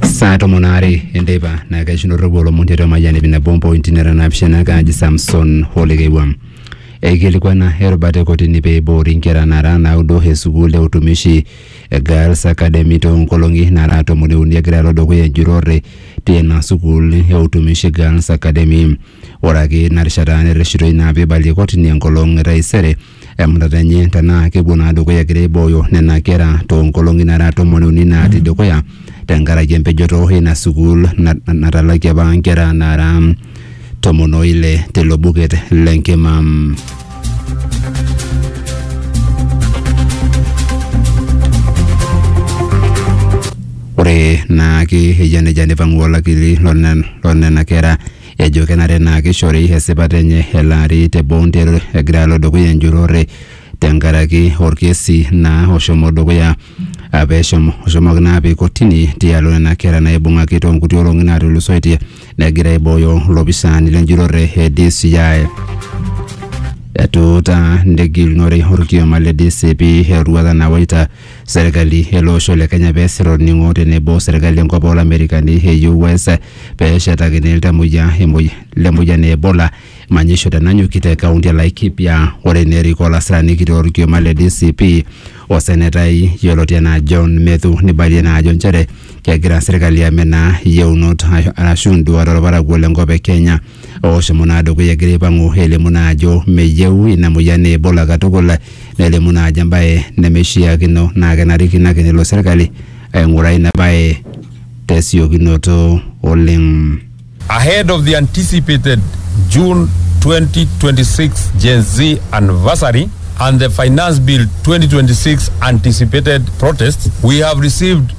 saa tomon aare enteipa naa kaishunoroki olomon tiatua mayian ip nabo mpointi nara naapishana kaaji samson olekeiwuam eikilikuana erubata e kotini pee eiboori nkera nara naudo e sukuul e utumishi e girls academy too nkolong'i nara tomoni uni egira alo dukuya enjurore tina sukuul e utumishi girls academy ore ake ina rishata nerreshitoi naa peibalie kotini enkolong e taisere emutata enye tenaa kepuo naa dukuya egira aibooyo nena kera toonkolong'i nara tomoni uni natii dukuya tenkaraki empejoto ina sukuul na- na- natalakie apa nkera naara tomon oile tilo buket lenkima. Ore naake eyia nejia neipang'u olakili lone- lonena kera ejo kenare naa keishori esipata enye elaari te Bounter egira alo dukuya enjurore tenkaraki orkesi naa oshomo dukuya ah, peeshomo oshomoki naa apik kotini tialo nena kera naibung'aki toonkuti olong'i naatulusoitie negira aibooyo ilopisaani lenjurore e DCI. Etuutaa negilunore orkioma le DCP eroruata nawaita serkali ele osho le Kenya peesir olning'o tenebo serkali enkop olamerikani e US peeshetakini iltamoyia emoi- le moyian e Ebola manyisho tenanyuki te kaunti e Laikipia ore nerik olasirani kitok orkioma le DCP o senetai yioloti enaa John Methu neibalie naa ajo nchere kegira serkali amenaa yieunot arashu induat olparakuo le nkop e Kenya Ooshomo naa dukuya egira aipang'u elimu naa ajo meyieu ina moyian Ebola katukul nelimu naa ajo embae nemeishiakino naa kenarikino ake nelo serkali aing'uraa ina bae tesiokinoto oleng. Ahead of the anticipated June 2026 Gen Z anniversary and the Finance Bill 2026 anticipated protests, we have received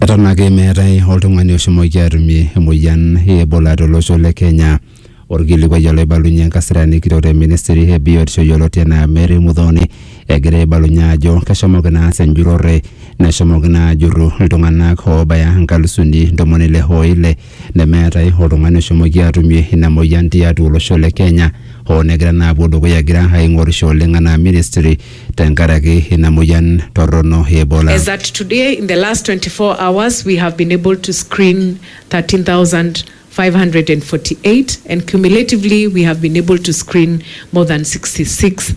eton ake meetae oltung'ani oshomoki atumie emoyian e ebola tolosho le kenya orkilikuai oloibalunye enkasirani kitok te ministry e biotisho yioloti enaa mary mudhoni egira aibalunye ajo keshomoki naa aas enjurrore neshomoki naa ajurru iltung'anak oobaya inkalusuni ntomoni ile oile nemeetae oltung'ani oshomoki atumie ina moyian tiatua olosho le Kenya hoo negira naa apuo dukuya egira aing'orisho oleng anaa ministry tenkaraki ina moyian torrono e Ebola. As at today, in the last 24 hours, we have been able to screen 13,548 and cumulatively we have been able to screen more than 66,000.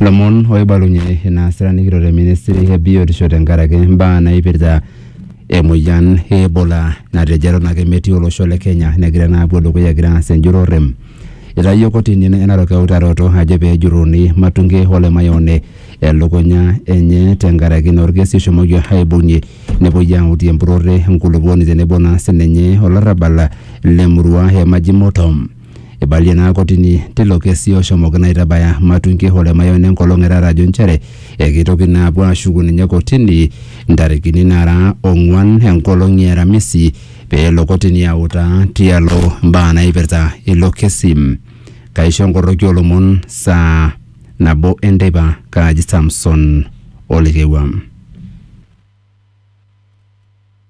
Lomon oibalunye inaasita nikito te ministry e biotisho tenkaraki imbaa naipirta emoyian e Ebola natejo eton ake metii olosho le Kenya negira naa apuo dukuya egira aas enjurrore. Eitayio kotini e Narok eutaroto ajo pee ejurruni Matunge o Lemayioni elukunya enye tenkaraki naa olkesi oshomoki aibung'ie nepuoi autie empurrore e nkulupuoni tenebo naa sininye olarrabal le murua e Majimoto. Eibalie ina kotini teilo kesi oshomoki naitabaya Matungi o Lemayian enkolong e taata ajo nchere ekeitoki naa apuo aashuku ninye kotini ntarikini naara ong'uan enkolong e Aramisi pee elo kotini autaa tialo mbaa naipirta ilo kesi. Kaisho enkoroki oo lomon saa nabo e nteipa kaaji Samson Olekewua.